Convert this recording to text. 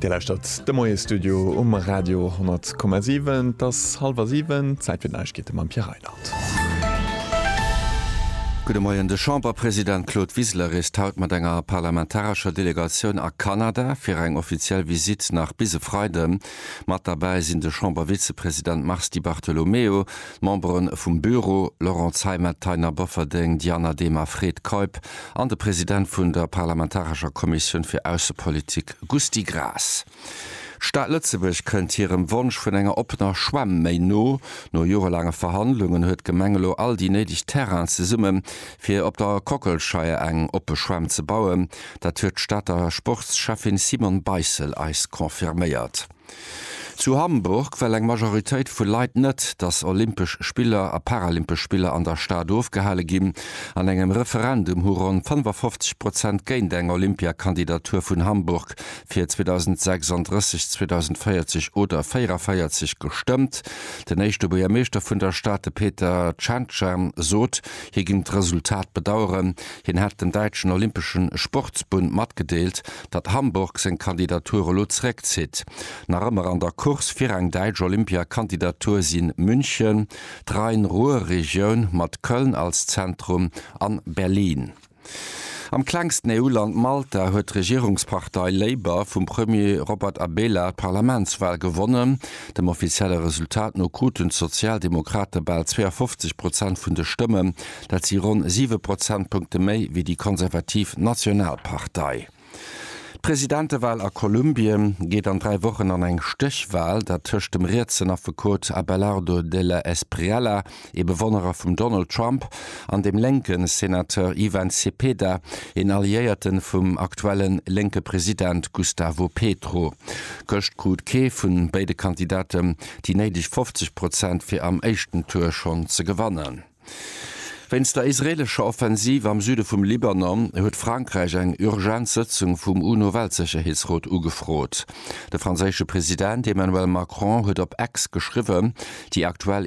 Dir lauschtert de Moie-Studio um Radio 10,7. Et ass hallwer siwen, Zäit fir d'Neiegkeete mam Pierre Reinert. Gudde Moien. De Chamberpresident Claude Wiseler reest haut mat enger parlamentarescher Delegatioun a Kanada fir eng offiziell Visitt nach bis e Freide. Mat derbäi sinn de Chambervizepresident Mars Di Bartolomeo, d'Membere vum Büro, Laurent Zeimet, Taina Bofferding, Diana Demer, Fred Keup, an de President vun der parlamentarescher Kommissioun fir Aussepolitik, Gusty Graas. D'Stad Lëtzebuerg kënnt hirem Wonsch vun enger oppener Schwämm méi no. No jorelaange Verhandlungen huet d'Gemeng elo all déi néideg Terrainen zesumme fir op der Kockelscheier eng oppe Schwämm ze bauen. Dat huet d'Stater Sportscheffin Simone Beissel eis confirméiert. Zu Hamburg well eng Majoritéit vu Leit net, datt Olympesch Spiller a Paralympesch Spiller an der Stad ofgehale ginn. An engem Referendum hu ronn 55 Prozent géint eng Olympiakandidatur vun Hamburg fir 2036, 2040 oder 44 gestëmmt. Den éischte Buergermeeschter vun der Stad, de Peter Tschentscher, sot, hie géing d'Resultat bedaueren. Hien hat den däitschen Olympeschen Sportsbund matgedeelt, datt Hamburg seng Kandidatur elo zeréckzitt. Nach ëmmer an der Course fir eng däitsch Olympia-Kandidatur si München, d'Rhein-Ruhr-Regioun mat Köln als Zentrum an Berlin. Am klengsten EU-Land Malta huet d'Regierungspartei Labour vum Premier Robert Abela d'Parlamentswal gewonnen. Dem offizielle Resultat no kruten d'Sozialdemokrate bal 52 Prozent vun de Stëmmen, Dat si ronn siwe Prozentpunkte méi wéi déi konservativ Nationalpartei. D'Presidentewal a Kolumbien geet an dräi Wochen an eng Stéchwal, dat tëscht dem rietsen Affekot Abelardo de la Espriella, ee Bewonnerer vum Donald Trump, an dem lénke Senateur Ivan Cepeda, een Alliéierte vum aktuelle lénke President Gustavo Petro. Gëscht krut kee vu béide Kandidate déi néideg 50 Prozent, fir am éischten Tour schonn ze gewannen. Wéinst der israeelescher Offensiv am Süde vum Libanon huet Frankräich eng urgent Sëtzung vum UNO-Weltsécherheetsrot ugefrot. De franséische President Emmanuel Macron huet op X geschriwwen, déi aktuell